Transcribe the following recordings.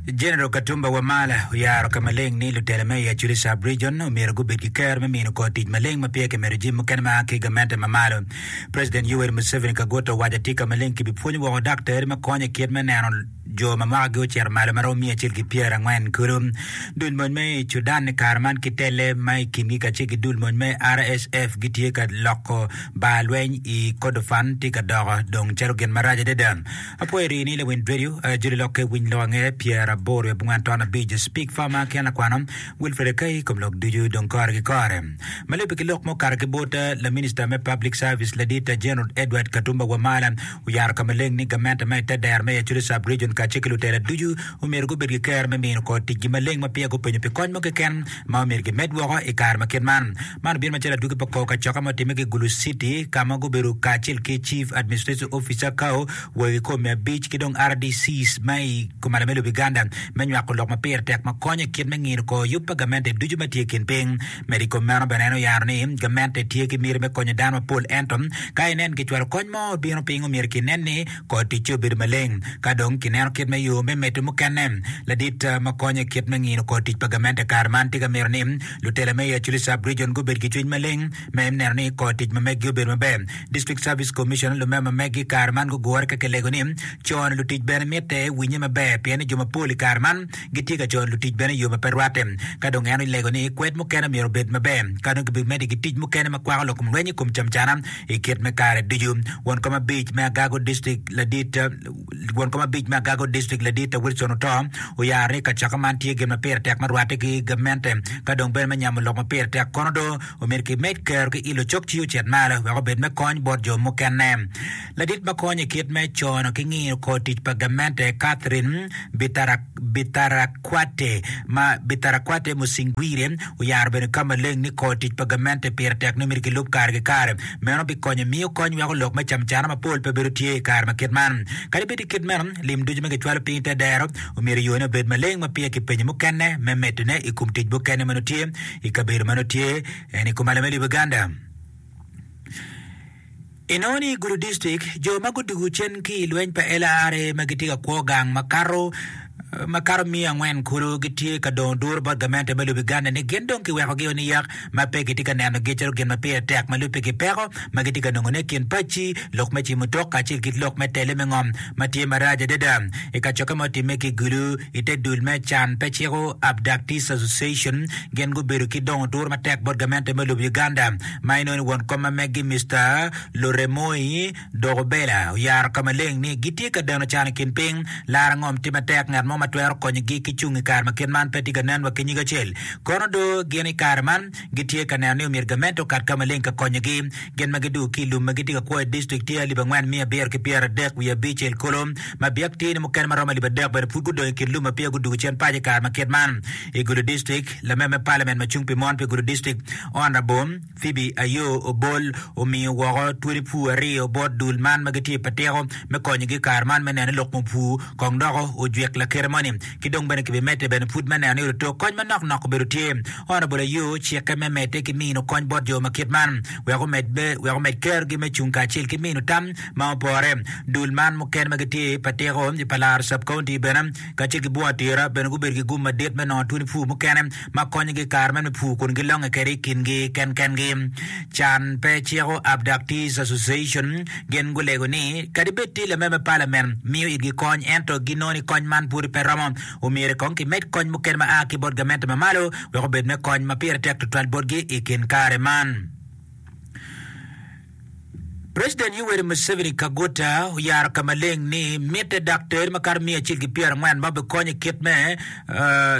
Jeneral Katumba Wamala oyaro ka maleng ni lutela me i Acholi Sub Region omyero gubed ki kero me mino kor tic maleng ma peya kimedo jami mukene ma a ki i gamente ma malo. President Yoweri Museveni Kaguta owaco atye ka maleng kibipwonyo woko daktari ma konyo i kit me neno jo ma mwakagi ocito malo ma romo miya acel ki pyera angwen kulu. Dul mony me i Cudan i kare man ki telle ma i kingi kacel ki dul mony me RSF gitye ka loko bar lweny i Kordofan tye ka doko dong calo gin marac adada. Apwoyo rii ni leweny radio, joli lokke winy lok ange pyer aboro i abongwan ton abic, speak farmer ken lakwano Wilfred Akai kom lok ducu dong kore ki kore. Malebe ki lok ma okato ki bot laminista me public service ladit General Edward Katumba Wamala oyaro ka maleng ni gamente ma ite dero me Acholi sub region kace ki lutela ducu omyero gubed ki kero me mino kor ticgi maleng ma peya gupenyo pi kony mo keken ma omyero gimed woko i kare ma kit man. Man obino macalo adwogi pa kor kacoka ma otimme ki i Gulu City ka ma gubedo kacel ki Chief Administrative Officer, cao, wegi kor me abic ki dong rdcs ma i Komanda me Lobo Iganda me nywako lok ma pire tek ma konyo i kit me ngino kor yub pa gamente ducu ma tye i kin piny. Medo i kom meno bene en oyaro ni gamente tye ki miti me konyo dano mapol ento ka inen kicwalo kony mo bino piny omyero kinen ni Kor ticce obedo maleng. Ka dong kineno kit ma yo me medde mukene ladit ma konyo i kit me ngino kor tic pa gamente kare man tye ka mito ni lutela me Acholi Sub Region gubed ki cwiny maleng me neno ni kor tic ma meggi obedo maber. District Service Commissioner lume ma meggi kare man gugure ka kilego ni cono lutic bene mitte winye maber pien ni jo mapol i kare man gitye ka cono lutic bene i yo ma pe rwatte. Ka dong en olego ni kwed mukene myero obed maber ka dong kibimeddi ki tic mukene ma kwako lokomlweny i kom camcana i kit me kare ducu. Won kom abic me agago distrik ladit Won kom abic me agago distrik ladit Wilson Oto oyaro ni kacako man tye gin ma pire tek ma rwatte ki gamente ka dong bene me nyamo lok ma pire tek kono do omyero kimed kero ki ilo cok ci ocit malo wek obed me kony bot jo mukene. Ladit ma konyo i kit me cono ki ngiyo kor tic pa gamente Catherine Bitarak Bitarakwate, ma Bitarakwate Musinguire oyaro obedo ka maleng ni kor tic pa gamente pire tek ni myero kilub kare ki kare. Meno bikonyo miyo kony weko lok me camcana mapol pe bedo tye i kare ma kit man. Kadi bed i kit meno, lim ducu ma kicwalo piny te dero omyero yone obed maleng ma peya kipenyo mukene me medone i kom tic mukene ma nongo tye i kabedo ma nongo tye en i kom alame liboganda. Inongo ni i gudo dictrict, jo ma gudwogo cen ki i lweny pa LRA ma gitye ka kwo gang makato makato miya angwen kulu gitye ka dongo duru bot gamente me lobo Uganda ni gin dong kiwekogi o niyak ma pe gitye ka nenogi calo gin ma pire tek ma lubbe ki peko ma gitye ka nongone kin pacci lok me ci mutoka kacel kit lok me tele me ngom ma tye marac adada i kacokke ma otimme ki Gulu i te dul me can pe ciko Abductees Association gin gubedo ki dongo duru matek bot gamente me lobo Uganda ma inoni won kom ma meggi Mister Luremoi Dokobela oyaro ka maleng ni gitye ka deno can i kin piny laro ngom tye matek ngat mo ma twero konyo gi ki cung i kare ma kit man pe tye ka nen wa ki nyig acel kono do gin i kare man gitye ka neno ni omyero gamente okat ka maleng ka konyo gi gin ma gidu ki ilum ma gitye ka kwo i district tye alip angwen miya abiro ki pyera adek wiye abicel kolo ma biak tye ni mukene ma romo alip adek bene pud gudong i kin lum ma peya gudugu cen paco i kare ma kit man i Gulu district lame me parliament ma cung pi mon pi Gulu district Onrabom Phoebe Ayoo Obol omiyo woko twoli pur aryo bot dul man ma gitye pa tiko me konyogi i kare man me neno ni lok mupur kong dok ojwik lakite moni ki dong bene kibimedde bene pud me neno ni oto kony manok nok obedo tye. Onrabol Ayoo ocikke me medde ki mino kony bot jo ma kit man wek omed be wek omed kerogi me cung kacel ki mino tam ma opore. Dul man mukene ma gitye pa tiko i pa laro sub county bene kacel ki bwunga tira bene gubedo ki gum madit me nongo twoni pur mukene ma konyogi i kare meno me pur kun gilonge kwede i kingi kenkengi. Can pe ciko Abductees Association gin gulego ni kadi bed tye lame me palamen miyo itgi kony ento ginongo ni kony man pwod pe romo, omyero kong kimed kony mukene ma a ki bot gamente ma malo wek obed me kony ma pire tek tutwal botgi i kin kare man. President Yoweri Museveni Kaguta oyaro ka maleng ni mitte dok ter makato miya acel ki pyera angwen ma obikony i kit me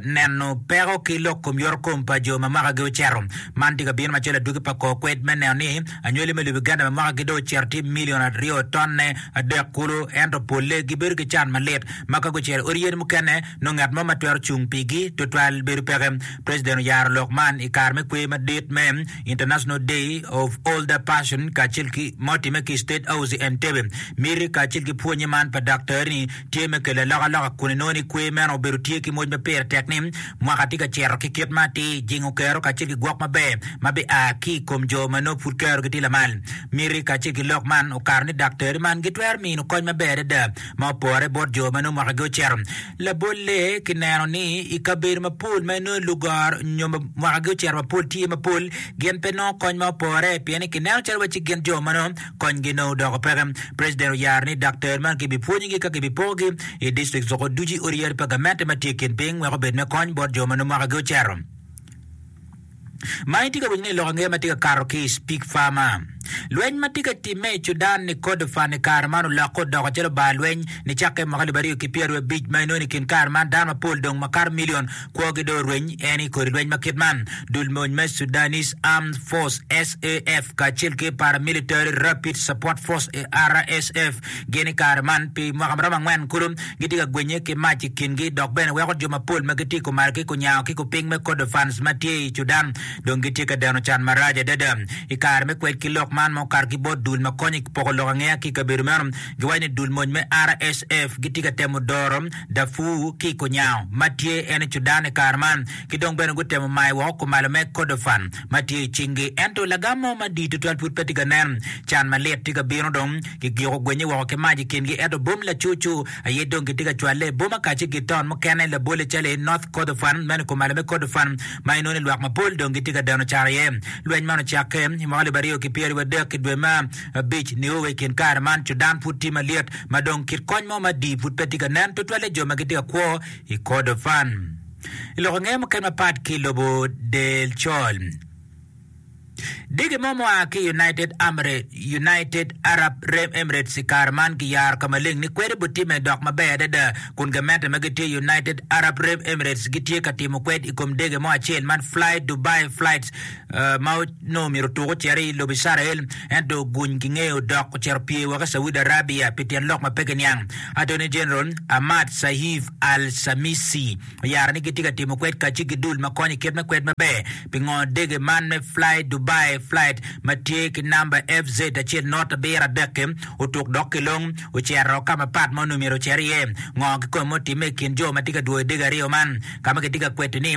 neno peko ki lok kom yoto kom pa jo ma mwaka gi oceto. Man tye ka bino macalo adwogi pa kor kwed me neno ni anywali me lobo Uganda ma mwaka gi dong oceto tye million aryo tonne adek kulu ento polle gi bedo ki can malit ma ka gucito i odi yadi mukene nongo ngat mo ma twero cung pigi tutwal bedo peke. President oyaro lok man i kare me kwe madit me International Day of Older Person kacel ki ma otimme ki i State House i Entebbe. Miti kacel ki pwonye man pa daktari-ni tye me kelo alokaloka kun inongo ni kwer meno obedo tye ki moc ma pire tek ni mwaka tye ka cito ki kit ma atir, jingo kero kacel ki gwok maber ma bia ki i kom jo ma nongo pud kerogi tye lamal. Miti kacel ki lok man okato ni daktari man gitwero mino kony maber adada. ma opore bot jo ma nongo mwakagi ocito. Labolle, kineno ni i kabedo mapol ma nongo lugoro nyo mwakagi ocito mapol tye mapol, gin pe nongo kony ma opore pien ni kineno calo wacci gin jo ma nongo konygi nongo odoko peke. President oyaro ni daktar man kibipwonyogi ka kibipokogi i district Zoko ducu i odi yadi pa gamente ma tye i kin piny wek obed me kony bot jo ma nongo mwakagi ocito. Ma itye ka winyo ni i lok angeya ma tye ka kato ki i Speak Farmer. Lweny ma tye ka timme i Cudan ni Kordofan i kare man olokke odoko calo bar lweny nicakke mwaka alip aryo ki pyeraryo abic ma inongo ni i kin kare man dano mapol dong makato milion kwogi dong orweny en i kodi lweny ma kit man. Dul mony me Sudanese Armed Force, SAF, kacel ki Paramilitary Rapid Support Force, RSF, Gin i kare man pi mwaka maromo angwen kulu gitye ka gwenye ki mac i kingi dok bene weko jo mapol ma gitye i kumar ki kunyango ki kupiny me Kordofans ma tye i Cudan dong gitye ka deno can marac adada. I kare me kwed ki lok man ma okato ki bot dul ma konyo i poko lok angeya ki i kabedo meno, giwaco ni dul mony me RSF gitye ka temo doro Darfur ki i kunyango ma tye en i Cudan i kare man ki dong bene gutemo mayo woko kumalo me Kordofan. ma tye i cingi. Ento lagam mo madit tutwal pud pe tye ka nen. Can malit tye ka bino dong. Gigyoko gwenye woko ki mac i kingi, ento bom lacucu aye dong gitye ka cwalle. Bom akace ki taun mukene labolle calo i North Kordofan, meno i kumalo me Kordofan, ma inongo ni lwak mapol dong gitye ka deno caro iye. Lweny man ocakke i mwaka alip aryo ki pyeraryo adek i dwe me abic nio wa i kin kare man. Cudan pud tye malyet ma dong kit kony mo madii pud pe tye ka nen tutwalle jo ma gitye ka kwo i Kordofan. I lok ange mukene mapat ki i lobo Del Col, dege mo mua ki United Arab Emirates i kare man giyaro ka maleng ni kwede butimme dok maber adada kun gamente ma gitye i United Arab Emirates gitye ka timo kwed i kom dege mo acel man Fly Dubai Flights ma onongo omyero otuk ocito i lobo Icrael, ento oguny ki ngeye odok ocito opye woko i Saudi Arabia pi tyen lok ma pe kiniang. Attorney General Ahmad Saif al-Shamisi oyaro ni gitye ka timo kwed kacce ki dul ma konyo i kit me kwed maber pi ngo dege man me FlyDubai flight ma tye ki namba FZ acel nurt abiro adek-ki otuk dok ki long ocito ka mapat ma onongo myero ocit iye. Ngo kikome ma otimme i kin jo ma tye ka dwoyo dege aryo man ka ma kitye ka kweto ni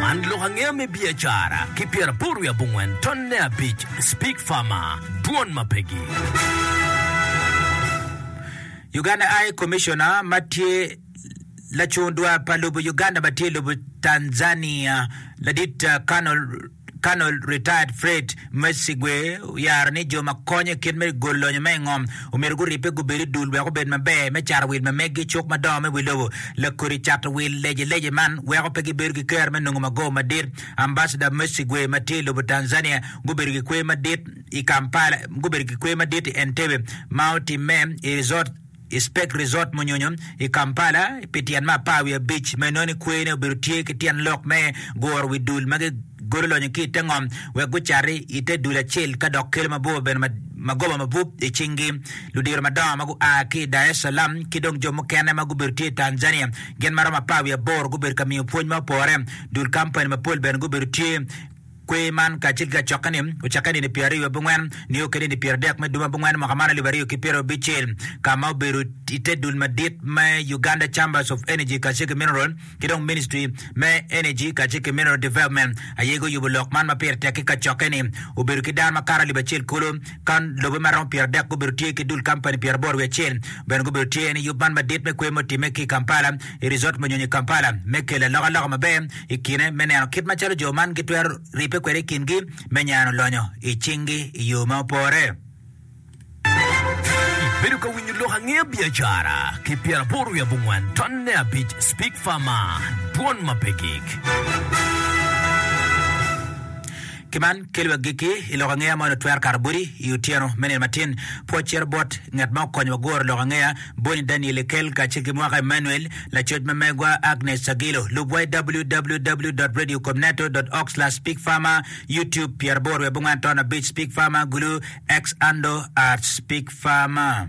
Man lok angeya me biacara ki pyeraboro wiye abongwen ton ne abic Speak Farmer dwon ma pegi. Uganda High Commissioner ma tye lacung dwar pa lobo Uganda ma tye i lobo Tanzania, Ladit Colonel Colonel Retired Fred Mesigwe oyaro ni jo ma konyo i kit me gol lonyo ma i ngom omyero guribbe gubed i dul wek obed maber me cato wil ma meggi, cuk madongo me wi lobo, lakodi cato wil lece lece man weko pe gibedo ki kero me nongo mago madit. Ambassador Mesigwe ma tye i lobo Tanzania gubedo ki kwe madit i Kampala, gubedo ki kwe madit i Entebbe ma otimme i resort. I Speke Resort Munyonyo i Kampala pi tyen me apar wiye abic ma inongo ni kwene obedo tye ki tyen lok me guro wi dul ma gigolo lonyo ki i te ngom wek gucati i te dul acel ka dok kelo mabor bene magoba mabup i cingi. Ludiro madongo ma gua ki i Dar es Salam ki dong jo mukene ma gubedo tye i Tanzania gin ma romo apar wiye aboro gubedo ka miyo pwony ma opore. Dul kampani mapol bene gubedo tye. Kwer man kacel ki lacokke-ni ocakke i nino pyera aryo bi ngwen nio kede nino pyera adek me duma bi ngwen mwaka man alip aryo ki pyera abicel ka ma obedo i te dul madit me Uganda Chambers of Energy kacel ki Mineral ki dong Ministry me Energy kacel ki Mineral Development aye guyubo lok man ma pire tek-ki kacokke-ni obedo ki dano makato alip acel kulu ka lobe ma romo pyera adek gubedo tye ki dul kampani pyera aboro wiye acel bene gubedo tye en yub man madit me kwer ma otimme ki i Kampala i Resort Manyonyo i Kampala me kelo alokaloka maber i kine me neno kit macalo jo man gitwero ribbe kwede i kingi me nyano lonyo i cinggi i yo ma opore. Ibedo ka winyo lok angeya biacara ki pyeraboro wiye abongwen tonne abic Speak Farmer, dwon ma pe gik. Ki man, kelo agikki i lok angeya ma onongo twero kato boti i otyeno me nino matin. Pwoc cito bot ngat ma okonyo wa guro lok angeya boni, Daniel Ekel, kacel ki mwaka Emmanuel, lacoc ma megwa Agnes Agilo. Lubwa i www.radiocomnato.org/speakfarmer, Youtube, pyeraboro wiye abongwen aton abic, Speakfarmer, Gulu, X, Ando, Arts, Speakfarmer.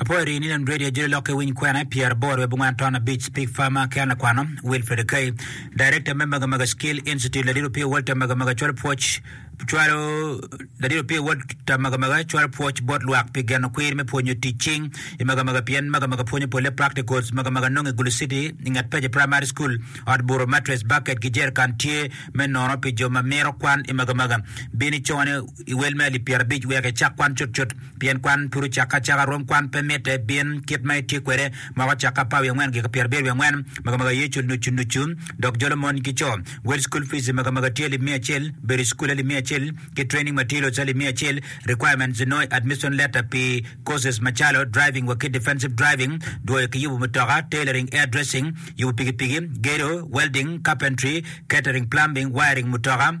Apoyo rii ni Lend Radio jolo lok ki winy kwena i pyeraboro i abongwen ton abic, Pig Farmer ki an lakwano, Wilfred Akei, Director me Magamaga Skill Institute, Ladit Opio Walter Magamaga cwalo pwoc cwalo Ladit Opio Walter Magamaga cwalo pwoc bot lwak pi geno kwir me pwonyo tic cing i Magamaga pien Magamaga pwonyo polle practicals. Magamaga nongo i Gulu City i nget Peje Primary School. Ot buro, mattress, bucket ki jerrican tye me nono pi jo ma mito kwan i Magamaga. Bin icone i wel me alip pyerabic wek icak kwan cutcut. Pien kwan pud ocakke acaka, rwom kwan pe mitte, bin kit ma itye kwede moko ocakke apar wiye angwen gika pyerabiro wiye angwen, makamaga Yecu nucu nucu dok jolo mon ki co. Wel school fees makamaga tye alip miya acel, bedo i school alip miya acel, ki training materials alip miya acel, requirements inongo admission letter pi courses macalo driving wa ki defensive driving, dwoyo ki yubu mutoka, tailoring, air dressing, yubu pikipiki, gedo, welding, carpentry, catering, plumbing, wiring mutoka,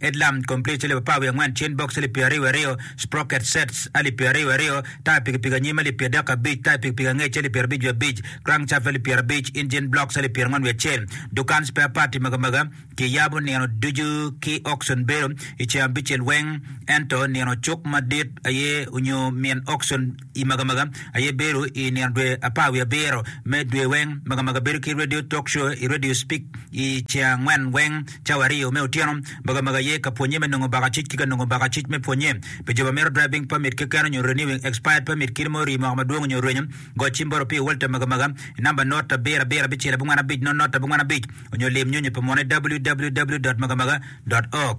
Headlamp Complete alip apar wiye angwen Chain Box alip pyeraryo wiye aryo Sprocket Sets alip pyeraryo wiye aryo Taya pikipiki anyim alip pyerdek ki abic Taya pikipiki angec alip pyerabic wiye abic Crankshaft alip pyerabic Engine Blocks alip pyerangon wiye acel Dukan Spare Part i magamaga kiyabo nino ducu ki Auction Bedo i ceng abicel weng ento nino cuk madit aye onyo min Auction I magamaga aye bedo i nino dwe apar wiye abiro me dwe weng. Magamaga bedo ki radio talk show i radio speak i ceng angwen weng cawa aryo me otyeno. Magamaga aye ka pwonye me nongo baka cuc ki ka nongo baka cuc me pwonye. Pi jo ma mito driving permit keken onyo renewing expired permit kit ma orii moko madwong onyo orwenyo, go cim bot Opio Walter Magamaga i namba not abiro abiro abicel abongwen abic not not abongwen abic onyo lim nyonyo pa munu i www.magamaga.org.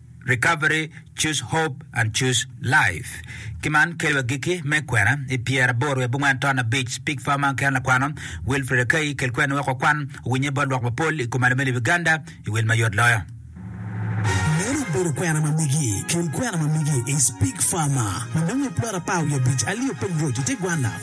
Recovery, Choose Hope, and Choose Life. Ki man, kelo agikki me kwena i pyera aboro wiye abongwen ton abic. Pig Farmer ki en lakwano, Wilfred Akei, kel kweni wek wakwan owinye bot lwak mapol i kom alame lib Uganda i wil mayot loyo. Meno obedo kwena ma migi. Kel kwena ma migi is Pig Farmer ma nongo i plot apar wiye abic, Alio Peng Road, i te gwanna.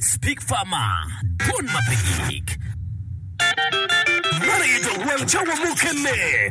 Speak Farmer, Dwon ma pe gik. Man aye dong wang cawa mukene.